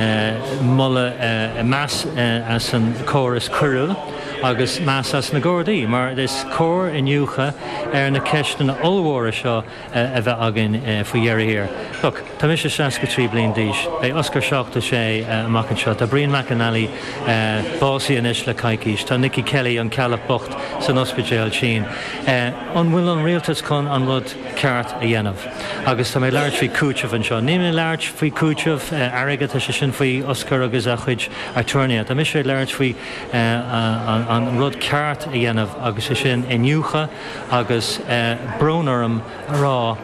Má tá meas as an gcóras coiriúil agus meas as na Gardaí, mar is cóir iniúchadh ar na ceisteanna ollmhóra seo a bheith againn faoi dheireadh thiar. Look, tá mise seasca trí bliain d'aois, beidh Osgur seachtó sé amach anseo, tá Brian McNally básaithe anois le coicís, tá Nicky Kelly, an Ceallach bocht, san ospidéal tinn. An bhfuil an rialtas chun an rud ceart a dhéanamh? Agus tá mé ag labhairt faoi chúiteamh anseo. Níl mé ag labhairt faoi chúiteamh airgid, tá sé sin faoi Osgur agus a chuid aturnaetha. Tá mise ag labhairt faoi an rud ceart a dhéanamh agus sé sin iniúchadh agus, brón orm a rá,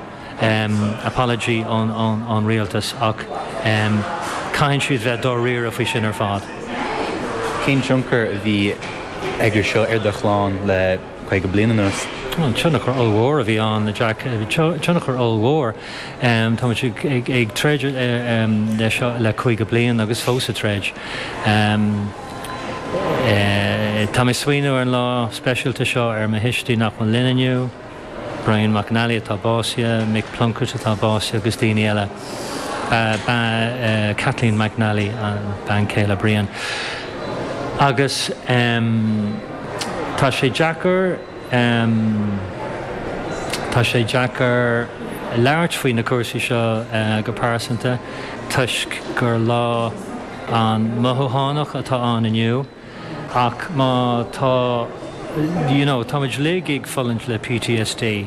apology ón rialtas ach caithfidh siad bheith dáiríre faoi sin ar fad. Cén tionchar a bhí aige seo ar do chlann le. caoga bliain anuas. Tionchar ollmhór a bhí ann, Jack, tionchar ollmhór. Tá muid ag troid leis seo le caoga bliain agus fós ag troid. Tá mé ag smaoineamh ar an lá speisialta seo, ar mo thuistí nach bhfuil linn inniu, Brian McNally atá básaithe, Mick Plunkett atá básaithe agus daoine eile. Kathleen McNally bean chéile Brian. Agus. Tá sé deacair, tá sé deacair labhairt faoi na cúrsaí seo go pearsanta toisc gur lá an-mhothúchánach atá ann inniu ach tá, you know, táimid uilig ag fulaingt le PTSD.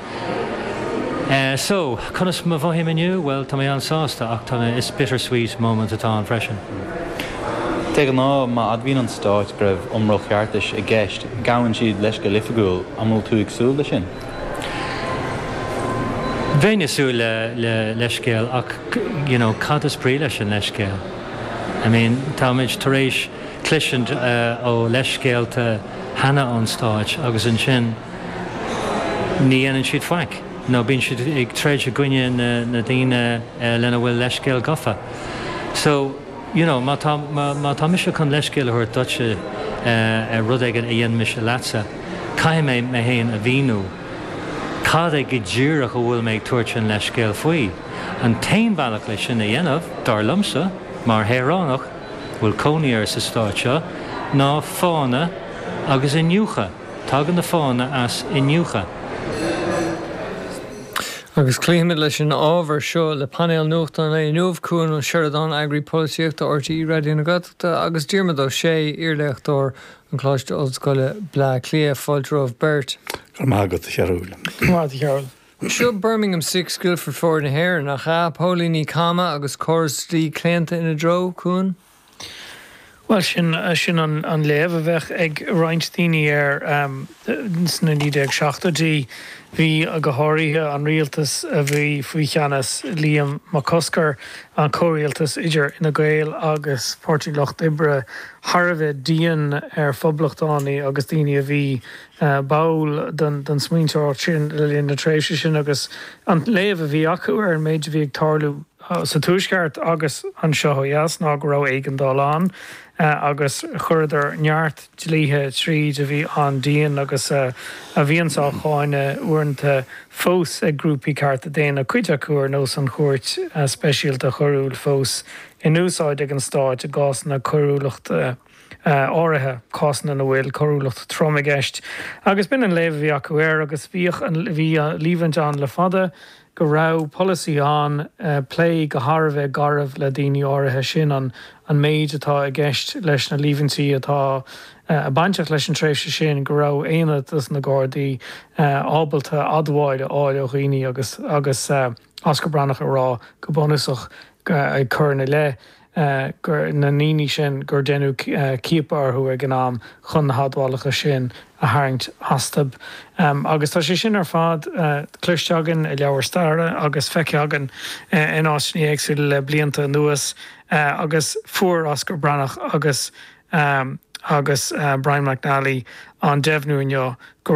So, conas a mhothaím inniu? Bhuel, tá mé an-sásta, ach tá mé, it's bittersweet moment atá ann freisin. De ghnáth, má admhaíonn an Stát go raibh iomrall ceartais i gceist, gabhann siad leithscéal oifigiúil. An bhfuil tú ag súil leis sin? Bheinn ag súil le leithscéal, ach, you know, cad is brí leis an leithscéal? I mean, táimid tar éis cloisint faoi leithscéalta cheana ón Stát agus ansin, ní dhéanann siad faic nó bíonn siad ag troid i gcoinne na daoine lena bhfuil leithscéal gafa. So, you know, má tá, má tá mise chun leithscéal a thabhairt duitse ar rud éigin a dhein mise leatsa, caithfidh mé mé fhéin a mhíniú cad é go díreach a bhfuil mé ag tabhairt an leithscéil faoi. An t-aon bhealach leis sin a dhéanamh, dar liomsa, mar shaoránach a bhfuil cónaí air sa Stát seo, ná fána agus iniúchadh. Tagann na fáthanna as iniúchadh. Agus cloífimid leis an ábhar seo le painéal nuachta an lae inniu, Cuan Ó Seireadáin, Eagraí Polaitíochta RTÉ Raidió na Gaeltachta agus Diarmuid Ó Sé, iarléachtóir an Choláiste Ollscoile, Bleá Cliath. Fáilte romhaibh beirt. Go raibh maith agat, a Chearúil. Seo Birmingham Six, Guildford Four na hÉireann, nach ea? Póilíní cama agus córas dlí claonta ina dtreo, a Chuain? Bhuel, sin, sin an léamh a bheadh ag roinnt daoine air. Sna 1970idí, bhí, go háirithe an rialtas a bhí faoi cheannas Liam Mac Cosgair, an comhrialtas idir Fhine Gael agus Páirtí an Lucht Oibre, thar a bheith dian ar phoblachtánaigh agus daoine a bhí báúil don smaointeoireacht sin le linn na tréimhse sin agus an léamh a bhí acu ar an méid a bhí ag tarlú. sa Tuaisceart agus anseo ó dheas ná go raibh éigeandáil ann agus chuireadar neart dlíthe tríd a bhí an-dian agus a bhíonns á cháineadh uaireanta fós ag grúpaí cearta daonna, cuid acu ar nós an Chúirt Speisialta Choiriúil fós in úsáid ag an Stáit i gcásanna coiriúlachta áirithe, cásanna ina bhfuil coiriúlacht throm i gceist. Agus b'in an léamh a bhí acu air agus bhíodh an líomhaint ann le fada, go raibh polasaí ann plé go thar a bheith garbh le daoine áirithe, sin an méid atá i gceist leis na líomhaintí atá bainteach leis an tréimhse sin, go raibh aonad sna Gardaí ábalta admháil a fháil ó dhaoine agus Osgur Breatnach ag rá go bunúsach ag cur ina leith. na ndaoine sin gur deineadh ciapadh orthu ag an am chun na hadmhálacha sin a tharraingt astu. Agus tá sé sin ar fad cloiste againn i leabhair staire agus feicthe againn in áiteanna éagsúla le blianta anuas agus fuair Osgur Breatnach agus Brian McNally an deimhniú inniu go